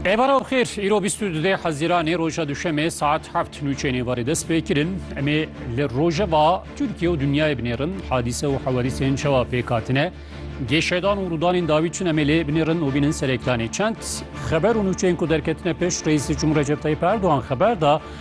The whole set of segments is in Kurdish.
Evara u xêr îro bîst û dudê hezîranê roja duşemê saet heft nûçeyên êvarê dest pê kirin. Em ê li rojeva Tirkiye û dinyayê binêrin hadîse û hewerîsên çawa pêk hatine. Gêşedan û rûdanên dawî çin em ê lê binêrin û bînin sereklanê. Çend xeber û nûçeyên ku derketine pişt Reîsê Cumhur Recep Tayyip Erdogan xeber da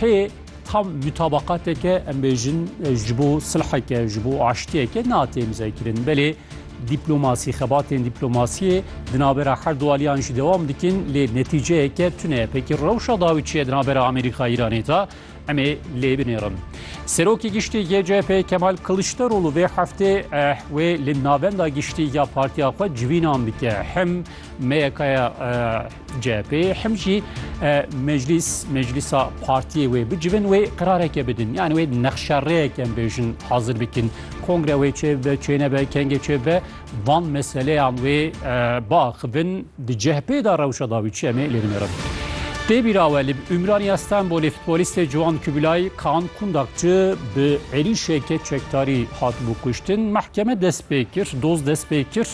Hê tam mutabaqateke em bêjin ji bo silheke ji bo aştiyeke natê mizekirin belê dîplomasî xebatên dîplomasiyê di navbera her du aliyan jî dewam dikin lê netîceyeke tune pekî rewşa dawî çiye di navbera Amerîka Îranê de em ê lê binêrin. Serokê giştî yê CHP Kemal Kiliçdaroglu vê heftê eh, wê li navenda giştî ya partiya xwe civînan dike. Hem meyekaya eh, CHP'ê hem jî meclîs meclîsa partiyê wê bicivin wê qirareke bidin yani wê nexşereyeke bêjin hazir bikin kongre wê çê be çêne be kengê çê be van meseleyan wê biaxivin di CHP'ê da rewşa dawî çi emê lê binêrin. Tê bîrawe li Ümraniya Stenbolê futbolîstê Ciwan Kubilay Kaan Kundakçı bi êrîşeke çekdarî hatibû kuştin. Mehkeme dest pê kir, doz dest pê kir.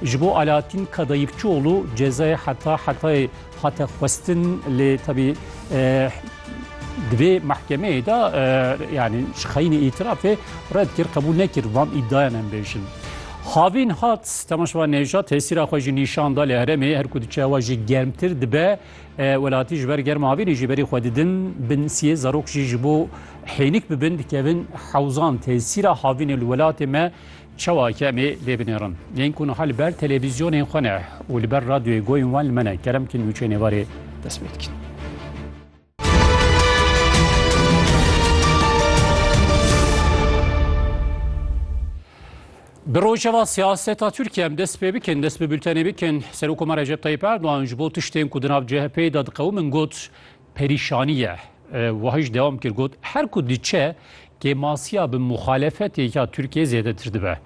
Ji bo Alaattîn Kadayıfçıoğlu cezayê heta hetayê hate xwestin lê tevî di vê mehkemeyê de yanî ji xeyînê îtirafê red kir qebûl nekir van îddayan em bêjin. Havîn hat Temaşva Nêjat tesîra xwe jî nîşan da lê heremê her ku diçe wa jî germtir dibe welatî ji ber germa havînê jî berî xwe didin bin siyê zarok jî ji bo hênik bibin dikevin hewzan tesîra havînê li welatê me Çawa ke em ê lê binêrin. Yên ku niha li ber televîzyonên xwe ne û li ber radyoyê goyên wan li me ne, kerem bikin nûçeyên êvarê dest pê bikin. Bi rojeva siyaseta Tirkiye em dest pê bikin, dest bi bültenê bikin. Serokoma Recep Tayyip Erdogan ji bo tiştên ku di nav CHP'ê de diqewimin got, perîşanî ye. Wiha jî dewam kir got, Her ku diçe kêmasiya bi muxalefetê ya Tirkiyeyê zêdetir dibe.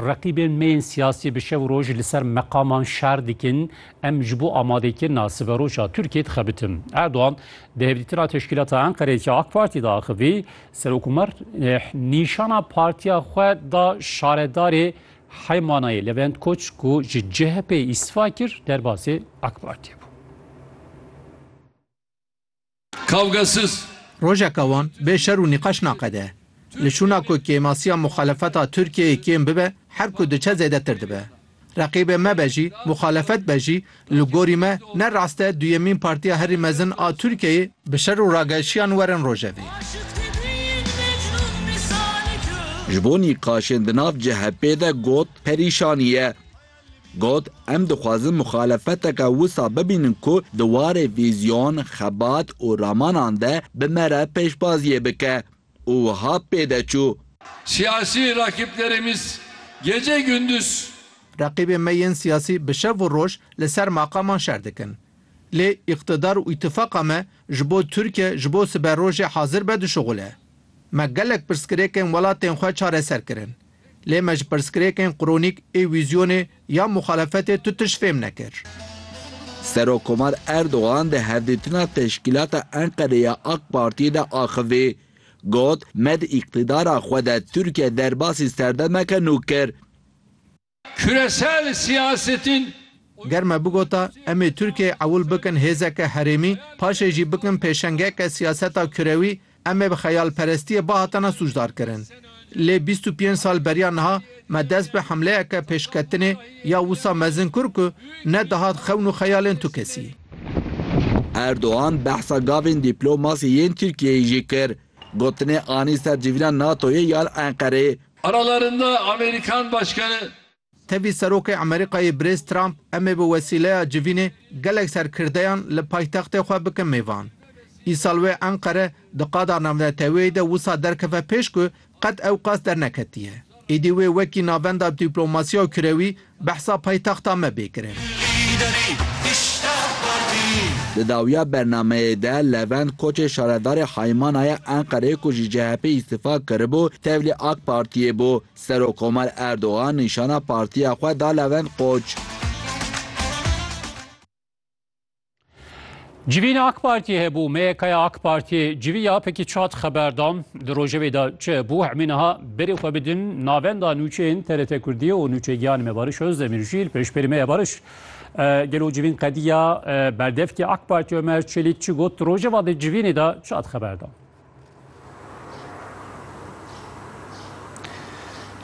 Reqîbên me yên siyasî bi şev û roj li ser meqaman şer dikin, em ji bo amadekirina siberoja Tirkiyeyê dixebitin. Erdogan di hevdîtina teşkîlata Enqereyê ya AK Partî de axivî, Serok Umer nîşana partiya xwe da şaredarê Heymanayê Levent Koç ku ji CHP'ê îstifa kir derbasê AK Partiyê bû. Kavgesiz. Rojeka wan bê şer û nîqaş naqede. Li şûna ku kêmasiya muxalefeta Tirkiyeyê kêm bibe, her ku diçe zêdetir dibe. Reqîbê me be jî, muxalefet be jî, Li gorî me ne rast e duyemîn partiya herî mezin a Tirkiyeyê bi şer û rageşiyan werin rojevê. Ji bo nîqaşên di nav CHP'ê de got perîşanî ye. Got, Em dixwazin muxalefeteke wisa bibînin ku di warê vîzyon, xebat û ramanan de bi me re pêşbaziyê bike. û wiha pê de çû. Siyasî rakîplerêmîz gece gunduz. Reqîbên me yên siyasî bi şev û roj li ser maqaman şer dikin. Lê îqtidar û îtifaqa me ji bo Tirkiye ji bo siberojê hazir be dişuxule. Me gelek pirsgirêkên welatên xwe çareser kirin. Lê me ji pirsgirêkên qronîk ê wîzyonê ya muxalefetê tu tişt fêm nekir. Serokkomar Erdogan di hevdîtina Teşkîlata Enqerê ya AK Partiyê de axivî. Got, Me di îqtîdara xwe de Tirkiye derbasî serdemeke nû kir. Küresel siyasetin Ger me bigota em ê Tirkiyeyê ewil bikin hêzeke herêmî, paşê jî bikin pêşengeke siyaseta kurewî, Em ê bi xeyalperestiyê bihatine sûcdarkirin. Lê bîst û pênc sal beriya niha me dest bi hemleyeke pêşketinê ya wisa mezin kir ku ne dihat xewn û xeyalên tu kesî. Erdogan behsa gavên dîplomasî yên Tirkiyeyê jî kir. Gotinê anî ser civîna NATO'yê yan Enqereyê. Aralarında Amerikan Başkanı Tevî Serokê Emerîkayê Birêz Trump em ê bi wesîleya civînê gelek serkirdeyan li paytextê xwe bikin mêvan. Îsal wê Enqere di qada navneteweyê de wisa derkeve pêş ku qet ew qas derneketiye. Êdî wê wekî navenda dîplomasiya kurewî behsa paytexta me bê kirin. Di dawiya bernameyê de Levent Koçê şaredarê Haymanaya Enqereyê ku ji CHP'ê îstifa kiribû tevlî Ak Partiyê bû. Serokkomer Erdogan nîşana partiya xwe da Levent Koç. Civîn AK Partiyê hebû, MYKya AK Partiyê civî ya pekî çat xeber da. Di rojevê de çi hebû hemî niha berê xwe bidin navenda nûçeyên TRT Kurdiyê û nûçe giyanê me Bariş Ozdemîr jî li pêşberî me ye. Bariş, gelo civîn qediya berdevkî AK Partiyê Omer Çelîk çi got? Di rojeva di civînê de çat xeber da?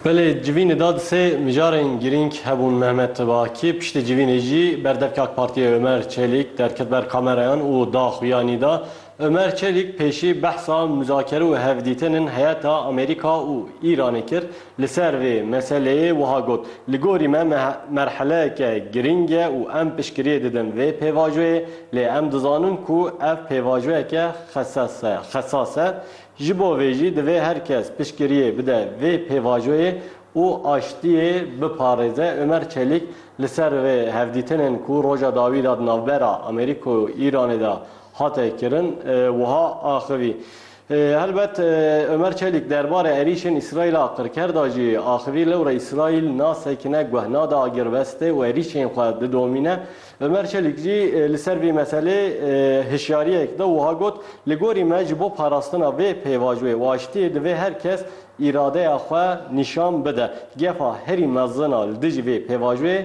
Belê civînê da di sê mijarên girîng hebûn Mehmet Tibaki piştî civînê jî berdevkê AK Partiyê Ömer Çelîk derket ber kamereyan û da xuya nî da. Ömer Çelîk pêşî behsa muzakere û hevdîtinên heyeta Amerîka û Îranê kir Li ser vê meseleyê wiha got, Li gorî me merheleyeke girîng e û em piştgiriyê didin vê pêvajoyê, lê em dizanin ku ev pêvajoyeke xesas e. Ji bo vê jî divê her kes piştgiriyê bide vê pêvajoyê û aştiyê biparêze. Omer Çelîk li ser vê hevdîtinên ku roja dawî de di navbera Amerîka û Îranê de hate kirin wiha axivî, Helbet Omer Çelîk derbarê êrîşên Îsraîla qirker da jî axivî lewre Îsraîl nasekine, guh nade agirvestê û êrîşên xwe didomîne. Omer Çelîk jî li ser vî meselê hişyariyek da û wiha got, Li gorî me ji bo parastina vê pêvajoyê û aştiyê divê her kes îradeya xwe nîşan bide. Gefa herî mezin a li dijî vê pêvajoyê,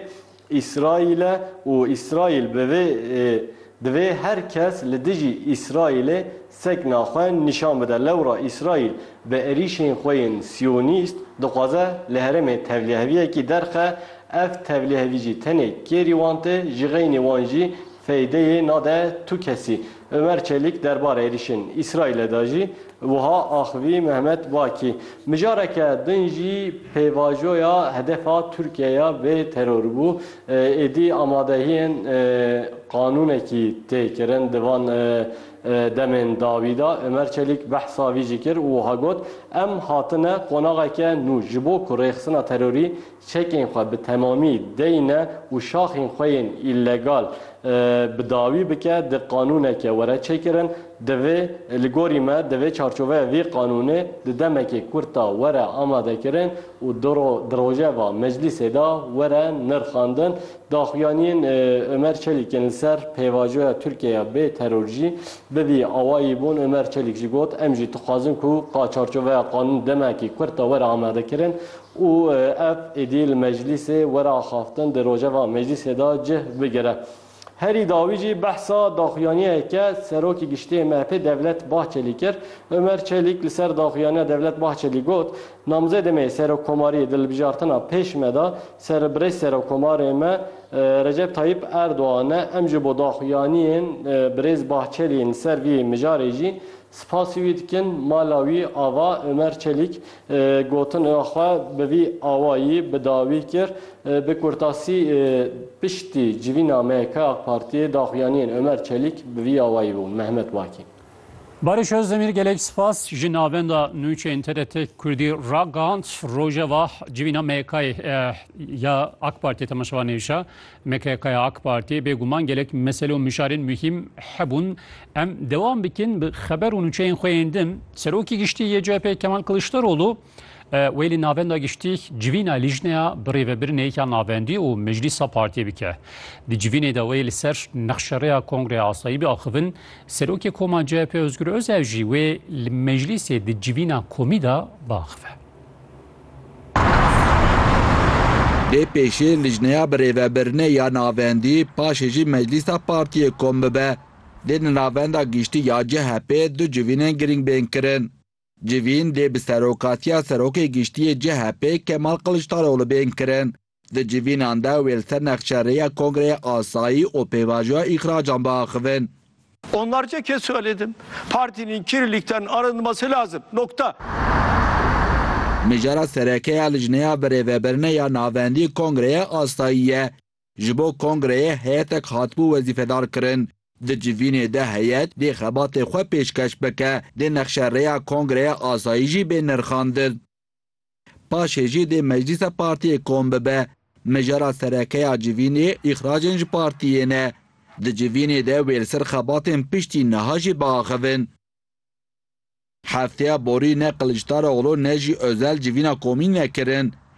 Îsraîle û Îsraîl bi vê Divê her kes li dijî Îsraîlê sekna xwe nîşan bide. Lewra Îsraîl bi êrîşên xwe yên siyonîst dixwaze li herêmê tevliheviyekî derxe. Ev tevlihevî jî tenê kêrî wan tê, jixeynî wan jî Feydeyê nade tu kesî. Omer Çelîk derbarê êrîşên Îsraîlê de jî wiha axivî Mehmet Bakî, Mijareke din jî pêvajoya hedefa Tirkiye ya vê terorî bû. Êdî amadehiyên qanûnekî tê kirin. Di van demên dawî de Omer Çelîk behsa vî jî kir û wiha got, Em hatine qonaxeke nû ji bo ku rêxistina terorî çekên xwe bi temamî deyne û şaxên xwe yên îllegal bi dawî bike, di qanûneke were çêkirin. Divê, li gorî me, di vê çarçoveya vî qanûnê di demekê kurt de were amadekirin û di rojeva meclîsê de were nirxandin. Daxuyaniyên Omer Çelîk yên li ser pêvajoya Tirkiyeyê bê teror jî bi vî awayî bûn. Omer Çelîk jî got, Em jî dixwazin ku ka çarçoveya qanûn demekê kurt de were amadekirin û ev êdî li meclîsê were axaftin di rojeva meclîsê de cih bigire. Herî dawî jî behsa daxuyaniyeke Serokê Giştî yê MHP'ê Devlet Bahçelî kir. Omer Çelîk li ser daxuyaniya Devlet Bahçelî got, Namzêdê me yê Serokkomariyê di hilbijartina pêş me de ser Birêz Serokkomarê me Recep Tayyîp Erdogan e, em ji bo daxuyaniyên Birêz Bahçelî yên li ser vî mijarê jî Spasî wî dikin mala wî ava Omer Çelîk gotin a xwe bi vî awayî bi dawî kir, Bi kurtasî piştî civîna MYK AK Partiyê daxuyaniyên Omer Çelîk bi vî awayî bûn. Mehmet Wakî. Barış Ozdemir gelek spas ji navenda nûçeyên TRT Kurdî ragand, Rojeva civîna MYK'ê ya AK Partiyê temaşevanê hişa, MKK'ya AK Partiyê bêguman gelek mesele û mişarên muhîm hebûn. Em dewam bikin bi xeber û nûçeyên xwe yên din. Serokê Giştî yê CHP Kemal Kiliçdaroglu wê li Navenda Giştî civîna Lîjneya Birêvebirinê ya Navendî û Meclîsa Partiyê bike. Di civînê de wê li ser nexşerêya Kongreya Asayî biaxivin. Serokê Koma CHP Ozgur Özel jî wê li meclîsê di civîna komî de biaxive. Lê pêşê lijneya birêvebirine ya navendî paşê jî meclîsa partiyê kom bibe. Lê li navenda giştî ya CHP'ê du civînên girîng bên kirin. Civîn lê bi serokatiya serokê giştî yê CHP'ê Kemal Kiliçdaroglu bên kirin. Di civînan de wê li ser nexçe rêya Kongreya Asayî û Pêvajoya Îxracan biaxivin. Onlarce kez söyledim. Partinin kirlilikten arınması lazım. Nokta. Mijara sereke ya Licneya Birêvebirine ya Navendî Kongreya Asayî ye. Ji bo kongreyê heyetek hatibû wezîfedar kirin. Di civînê de heyet dê xebatê xwe pêşkeş bike, dê nexşe rêya Kongreya Asayî jî bê nirxandin. Paşê jî dê meclîsa partiyê kom bibe. Mijara serekeya civînê îxracên ji partiyê ne. Di civînê de wê li ser xebatên piştî niha jî biaxivin. Hefteya borî ne Kiliçdaroglu ne jî Özel civîna komî nekirin.